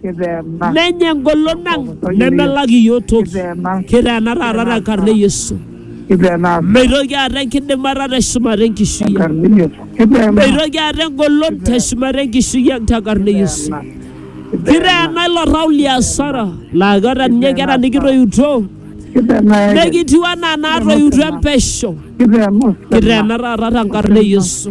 Kiteena. Menya engolon ang nemelak iyiook toki. Kiteena. Kiteena taata te nkarna e Yesu. Kiteena. Meitoki aata enkidimata te shumata enkishui ang. Enkarna e Yesu. Kiteena. Meitoki aata engolon te shumata enkishui ang te nkarna e Yesu. Kiteena ilo tau li asara laa keeta ninye nkera nikitoiutuo Kiteena. nekitiu anaa naatoiutuo empesho. Kiteena. Kiteena taata te nkarna e Yesu.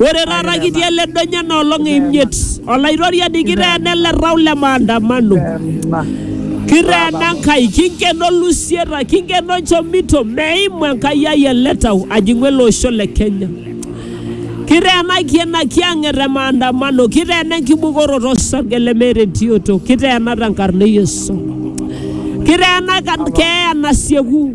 Ore taata kitii ele donya na olong e imiet, Olaitoriani kiteena ele tau le maandamano. Kiteena Enkai, kinkeno lusieta, kinkeno nchomito, meimu Enkai ai ele tau ajing'u ele osho le Kenya. Kiteenaki ena kiyang'et e maandamano, kiteena enkibukoroto osarge lemeeta entioto, kiteena tenkarna e Yesu. Kiteena kan- keeya nasieku,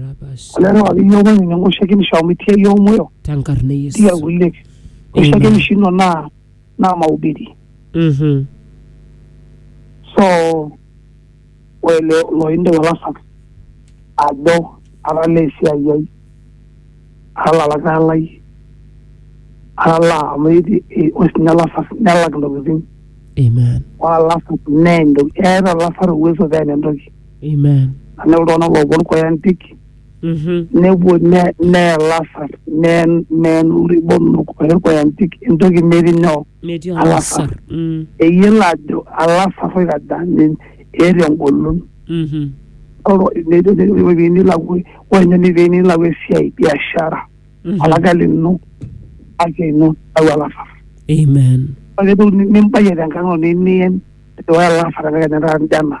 rapas kulelo akeyie openy nenkoshekinisho amu itii iyie omoyo tenkarna e itii Yesu. akulie koshekinisho ino naa naa maubiri Mhm. so ore lo- loindip olasak ajo atalaa esiai ai atalaa lakae lai atalaa amu eti- e- ore sinye olasak nelak intokitin Amen. ore olasak nee entoki eeta olasak uwezo peen entoki Amen. anaa iltung'anak loopuo nkoyantik Mhm. nepuo ne- neya lasar neen neen iribonok oe nkoyantik entoki metii nyoo Netii Alasar. olasar. Mm. eyiolo ajo alasar oikaja nin- eeta engolon Mhm. oro nilakua ore ninye netii nilakua esiai biashara Mhm. olaga lino ake ino au alasar Amen. ore toki nimbayie tenkang ino nimiyen ore alasar ake kenya taata njana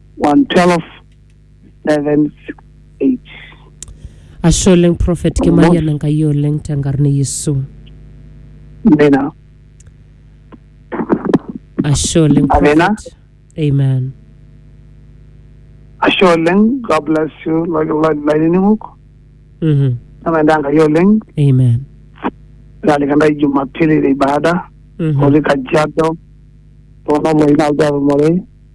112 768 ashe oleng prophet kimayian enkai oleng tenkarna e yesu amena ashe oleng Amena. prophet amen ashe oleng god bless you lainining'ok Mhm. namaenda enkai oleng amen nalika ndai jumapili le ibada Mhm. otii kajiado tonoloi naldo atumore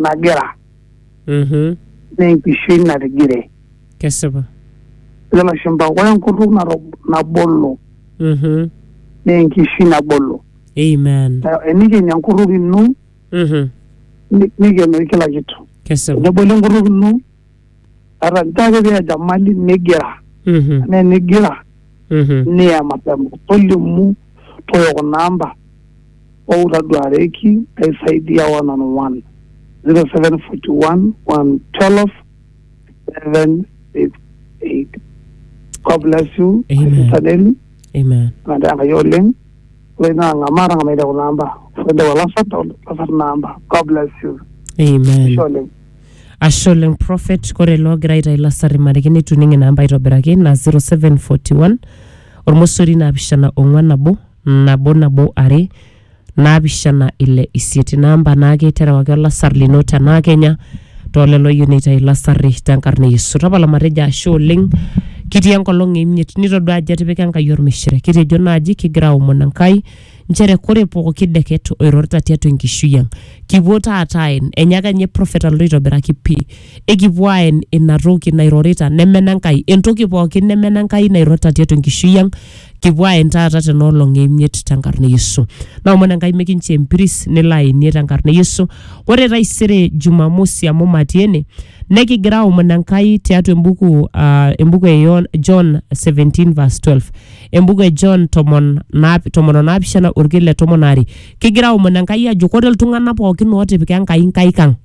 nagira Mhm. naa enkishui natigire Kesipa. ejo lashumpa ore enkutuk nato- nabolo Mhm. naa enkishui nabolo Amen. Na enikeni enkutuk ino Mhm. ni- nikeno kila kitu Kesipa. tenebolo enkutuk ino Tata nchoo ake pee enyamali nigira Mhm. anaa enigira Mhm. niya mapema tolimu toyo kuna amba ou taduareki aisaidia one on one 0741 112 768 God bless you my Amen. sister Nelly Amen. nataa enkai oleng ore naa ng'amaa tang'amaita kuna amba ore ntasat lasat namba God bless you Amen. Ashe oleng Ashe oleng Prophet, kore ele ogira aitayu lasarri mariki neitu ining ina amba aitobiraki naa 0741 ormosori naapishana ong'wan nabo nabo nabo are naapishana ile isiet. Ina amba naake terewaki olasar lino tenaa kenya too lelo oyieu neitayu lasarri tenkarna e Yesu. Tapala matejo ashe oleng kitii enkolong e imiet nitodua ajo etipika Enkai olmishire. Kitejo naaji kigira aomon Enkai nchere kore pooki deket oirorita tiatua enkishui ang kipuo taata aen enyaaka ninye prophet alotu aitobiraki pii ekipuo aen ina toki nairorita nemena Enkai entoki pooki nemena Enkai nairorita tiatua enkishui ang kipuo aen taata tena olong emiet tenkarna e Yesu naomon Enkai mikinchoo empiris nilo aenie tenkarna e Yesu ore taisere Jumamosi amu matii ene nekigira aomon Enkai tiatua embuku ah, embuku e Yon- John 17 verse 12 embuku e John tomon naap- tomon o naapishana orkil le tomon aare kigira aomon Enkai ajo kore iltung'anak pookin ootipika Enkai inkaik ang'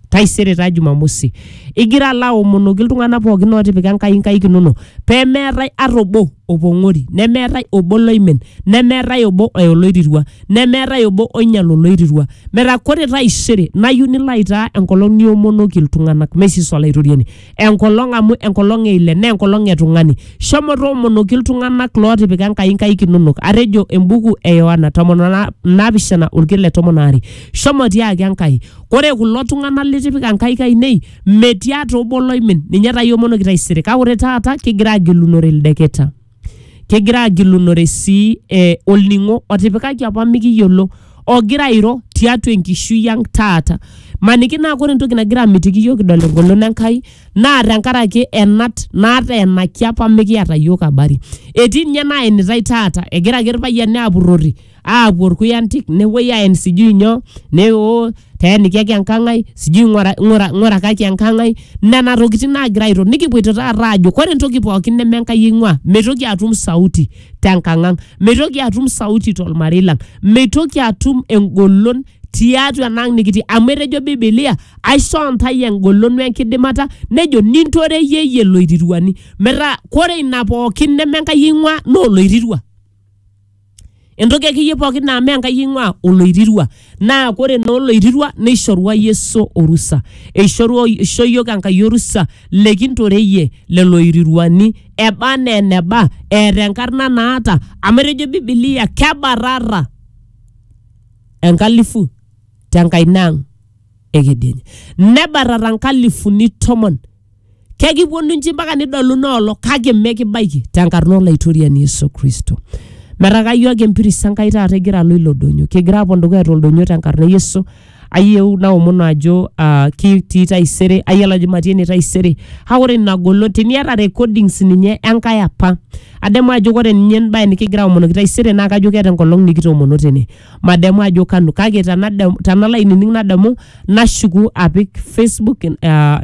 taisere taa Jumamosi igira alo aomonoki iltung'anak pookin ootipika Enkai inkaik inono pemeetae ata obo opong'ori nemeetae obo loimin nemeetae obo oya oloirirua nemeetae obo oinyal oloirirua metaa kore taisere nayieu nilo aitaa enkolong niomonoki iltung'anak mee sisi olaitoriani enkolong amu enkolong e ile naa enkolong e tung'ani shomo toomonoki iltung'anak lootipika enkai nkaik inonok atejo embuku e yohana tomon o na- naapishana orkil le tomon aare shomo tiaki enkai kore kulo tung'anak litipika nkaik ainei metii ata obo loimin ninye taa iomonoki taisere kake ore taata kigira agilunore ildeketa kegira agilunore sii eh, olning'o otipikaki apa mikiyiolo ogira airo tiatua enkishui ang taata maniki naa kore entoki nagira amitiki iyiok kidol engolon Enkai naa tenkaraki enat nateenaki apa mikiata iyiok habari etii ninye naenitai taata egira ake irpayiani apurrori. aapuo irkuyantik nepuoi aen sijui nyoo ne oo teenikiaki enkang ai sijui ng'ura, ng'ura, ng'urakaki enkang ai nena tokitin naagira airo nikipuoito taata aajo kore entoki pookin neme enkai eing'ua meitoki atum sauti tenkang ang meitoki atum sauti tolmarei lang meitoki atum engolon tiatua ena ang nikitii amu etejo bibilia aishoo ntae engolon wenkidimata nejo nintoreyie iyie iloiriruani metaa kore ina pookin neme enkai eing'ua naa oloirirua. entoki akeyie pookin naa mee enkai eing'ua oloirirua naa kore naa oloirirua neishorua yesu orusa eishorua eisho yiok enkai orusa lekintoreyie lelo oiriruani eba anaa eneba eeta enkarna naata amu etejo bibilia kebarrarra enkalifu tenkaina ang ekedienye nebarrarra nkalifuni tomon. kekiponu nji mpaka nidolu noolo kake mekibaiki tenkarna olaitoriani Yesu Kristo. Metaa kayieu ake empiris Enkai taata egira alo ilo donyo. Kigira apuo dukuya toldonyo tenkarna e Yesu. Ayieu naomonu ajo ah, kitii taisere, ayiolo ajo matii ene taisere. Kake ore ina golon teniata recordings ninye Enkai apa, adamu ajo ore ninye embae nikigira aomonoki taisere naa kajo keeta enkolong nikitoomono tene. madamu ajo kanu kake tanadamu tanalo ainining nadamu nashuku apik facebook uh,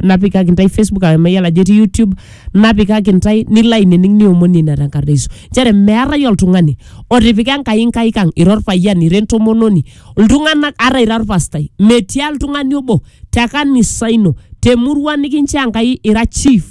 napikaki ntae facebook amu mayiolo ajo etii youtube napikaki ntae nilo ainining niomoni ina tenkarna yesu nchere meetae oltung'ani otipika enkai nkaik ang ira orpayian ira entomononi iltung'anak ata ira orpastai metii oltung'ani obo te kanisa ino temurua nikinchoo enkai ira chief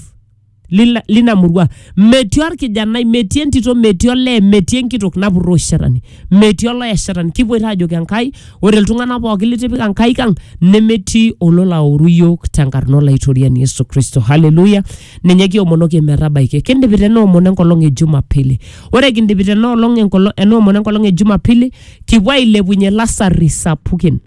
lina, lina murua metii orkijanai metii entito metii olee metii enkitok napurro shetani metii oloya shetani kipoito ajoki enkai ore iltung'anak pookin litipika enkai kang nemetii olola aoru yiok tenkarna olaitoriani yesu kristo haleluya ninye kiomonoki metabaiki kindipita ena omon enkolong e jumapili ore kindipita ena olong enkolong ena omon enkolong e jumapili kipuo ailepunye lasarri sapukin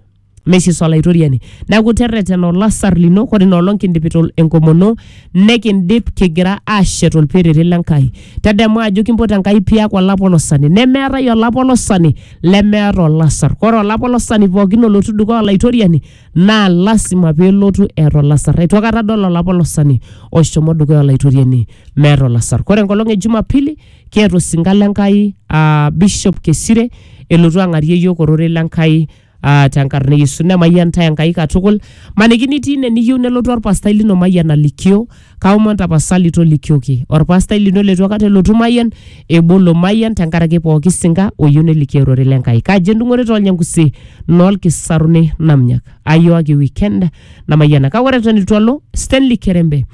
Mesis Olaitoriani. Neaku terretena olasar lino, ore ina olong kindipita ol- enkomono, nekindip kigira aashet olperere le Nkai. Tadamu ajo kimpot Enkai piak olapolosani. Nemeetae olapolosani lemeeta olasar. Ore olapolosani pookin olotu dukuya Olaitoriani naa lasima pelotu eeta olasar. Eitu aikata adol olapolosani oshomo dukuya Olaitoriani meeta olasar. Ore enkolong e Jumapili, kiata osinka le Nkai aa Bishop Kesire elotu ang'arie iyiok ororei le Nkai Ah, tenkarna e Yesu nemayian ntae Enkai katukul. Maniki nitii ine niyieu nelotu orpastai lino mayian alikio, kaomon tapasali tolikioki. Orpastai lino leitu aikata elotu mayian, ebolo mayian tenkaraki pooki sinka oyieu nelikio ororei le Nkai. Kaji endung'ore toolnyangusi noolkisaruni namnyak. Ayooki weekend namayiana. Kake ore eton eitu alo, Stanley Kerembe.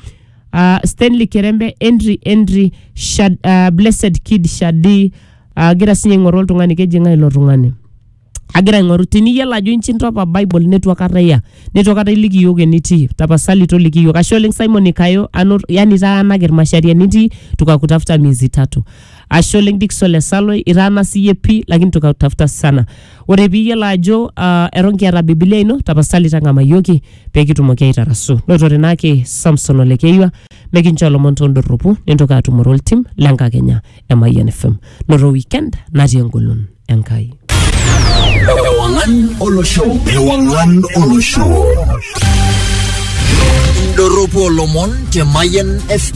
Ah, Stanley Kerembe, Henry Henry, Shad, ah, Blessed Kid Shadi, agira sinye aing'oru oltung'ani keji ng'ae ilo tung'ani. agira aing'oru teniyiolo ajo inchi intopa bible netu akata iya netu akata iliki iyiok enitii tapasali toliki iyiok ashe oleng simon ikayo ano yani itaanaki irmashari enitii tukakutafuta miezi tatu ashe oleng dikson lesaloi itaana siyie pii lakini tukakutafuta sana ore piiyiolo ajo uh, eton kiata bibilia ino tapasali tang'amayioki pekitumoki aitarasu notore naake samson olekeyiwa mekinchoo ilomon tondorropu nintoki atumore oltim lenkakenya emayian fm noto weekend natii engolon Enkai. Ewang'an olosho. Ewang'an olosho. Indorropu olomon te Mayian FM.